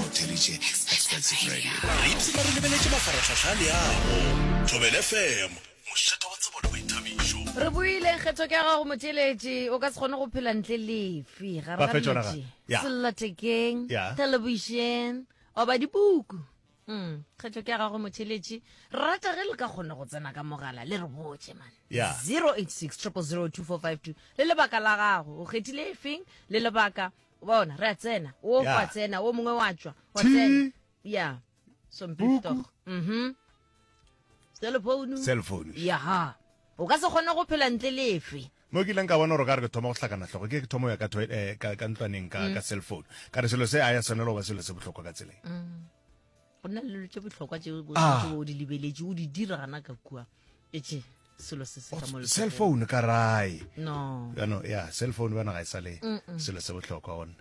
Mothelitše Expensive Radio. Re ipshina re lebeletše mafaratlhahla a leago. Thobel FM, mošata wa tsebo le boithabišo. Re boile kgetho ke ya gago motšeletši o ka se kgone go phela ntle lefe gare Ba ga fetša ona ga- metši ya. sellathekeng Ya. television oba dipuku mm. kgetho ke ya gago motšheletši rata ge le ka kgona go tsena ka mogala le re botše man Ya. 086 0002452 le lebaka la gago o kgethile efeng le lebaka bona re a tsena o yeah. wa tsena o mongwe wa tswa wa tsena ya sompito mhm cell phone cell phone ya ha o ka se kgone go phela ntle lefe mo ke ileng ka bona gore ka re ke thoma go hlakana tlhogo ke ke thoma ya eh, ka ntlwaneng ka mm. cell phone ka re selo se a ya tshwanelo ba selo se botlhokwa ka tseleng mm. go nna le dilo tse botlhokwa tse o Ah. setse o di lebeletše o di dira gana ka kua etse selo se se ka mo cell letsogong. phone ka rae no yano ya cell phone bana ga e sa le selo se bohlokwa one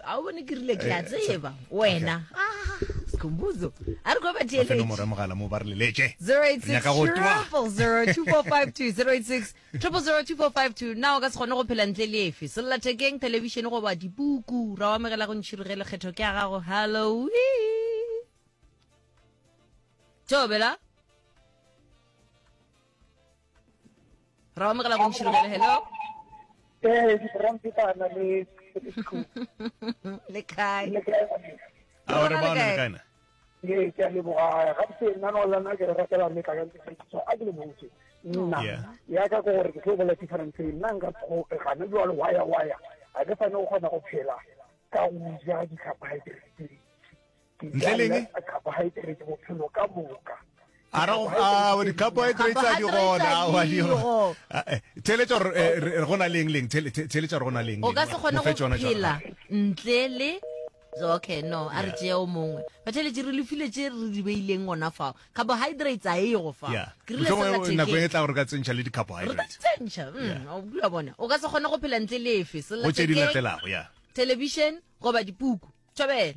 a o bone ke rile ke a Eh, tseba so- wena Ah, sikhumbuzo a re kwa ba fe nomoro ya theeletše mogala mo ba re leletše 086 Re nyaka go twa. 086 002452 Na o ka se kgone go phela ntle le efe? Sellathekeng, thelebišene goba dipuku? Ra o amegela go ntšhiri ge lekgetho ke a gago. Hallo. Tšobela. Ra o amegela go ntšhiri gele. Hello. Eh, rampipana le le kae? Re bona le kae? ee ke a leboga gabotse nna no lana ke re ratela mme tla ka ntsekiso a ke le botse nna ya ka ko gore ke tlo bola difference nna nka tshope gana jwalo waya waya a ke fane go kgona go phela ka go ja di-carbohydrate tse dintsi ke ja carbohydrate bophelo ka moka a ra go a di carbohydrates a di gona wa di go theletsa re gona leng leng theletsa re gona leng o ka se gone go phela ntle le okay no a re tšea o mongwe batheletše re lefile tše re di beileng gona fao carbohydrates a e go fa nako e tla gore ka tsentšha le di-carbohydrates tsentšha mm, o bula bona o ka se gone go phela ntle le efe sellathekeng television goba dipuku tšhabela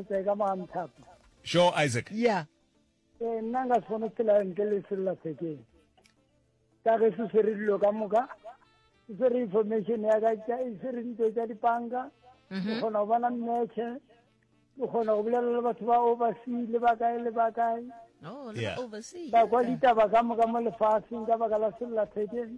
Ke ka moga mothapo. Sho Isaac. Yeah. Eh nna nka sona tsela nke le sella sekeng. Ka ge se swere dilo ka moka. Se swere information ya ka tša e swere ntlo tša dipanka. Ke mhm. kgona go bona mmeche. Ke kgona go bolela le batho ba oversee le ba kae le ba kae. Oh, yeah. oversee. Ka kwa ditaba ka moka mo lefatsheng ka baka la sella sekeng.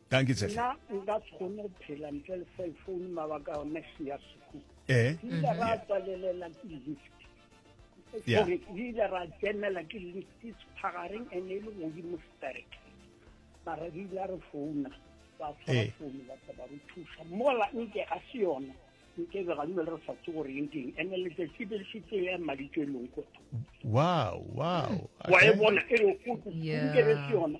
Dankie tshehle. Nna nka se kgone go phela ntle le cell phone mabaka a one se ya sekolo. Eh. Ke ile ra mm-hmm. tswalelela ke lift. Yeah. Sorry, ke ile ra tsenela ke lift sephagareng and e le godimo sterek. Mara re ile re founa ba tshwara eh. founu ba tla ba re thusa. Mola nke ga se yona. Nke be ga le re sa tse gore eng ke eng. And letsatsi le fitse ya maditswelong ko. Wow, wow. Wa e bona e re go ke re se yona.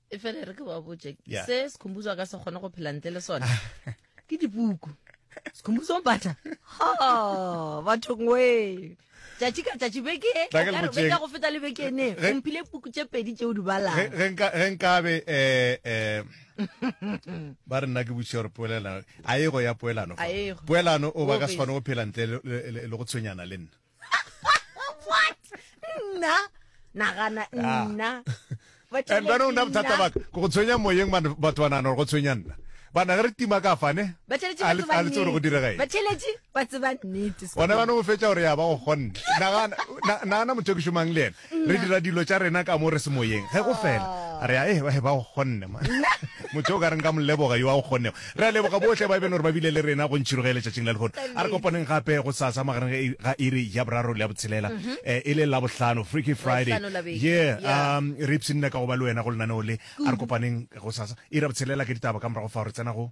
e fele re ke ba botse se sekhumbuzo ka se kgone go phela ntle le sone ke dipuku sikhumbuzo mpata ha batho ngwe tšatši ka tšatši beke beka go feta le beke ene o mphile puku tše pedi tšeo di balang ge nkabe um ba re nna ke botšiša gore poelano a e go ya poelano poelano o ba ka se kgone go phela ntle le go tshwenyana le nna what nna nagana ah. nna and bana o nna bothata baka ko go tshwenya moyeng batho ba nagana gore go tshwenya nna bana ge re tima ka fane a le tse gore go direga eng one bana o fetsa gore ya ba go kgonne nagana motho ke šomang le ena Re dira dilo tša rena ka mo re se moyeng. Ge go fela, a re, Ae, ba, ba go kgonne, ma. Motho yo o ka reng ka mo leboga, yo a go kgonnego. Re a leboga bohle ba e beno gore ba bile le rena go ntšhiroge ya letšatšing la lehono. A re kopaneng gape gosasa magareng ga i, ga iri ya boraro le ya botshelela, eh, e le Labohlano, Freaky Friday. Labohlano la beke, Yeah, ya. um, re ipshinne ka go ba le wena go lenaneo le. A re kopaneng gosasa, iri ya botshelela ke ditaba ka morago fao re tsena go.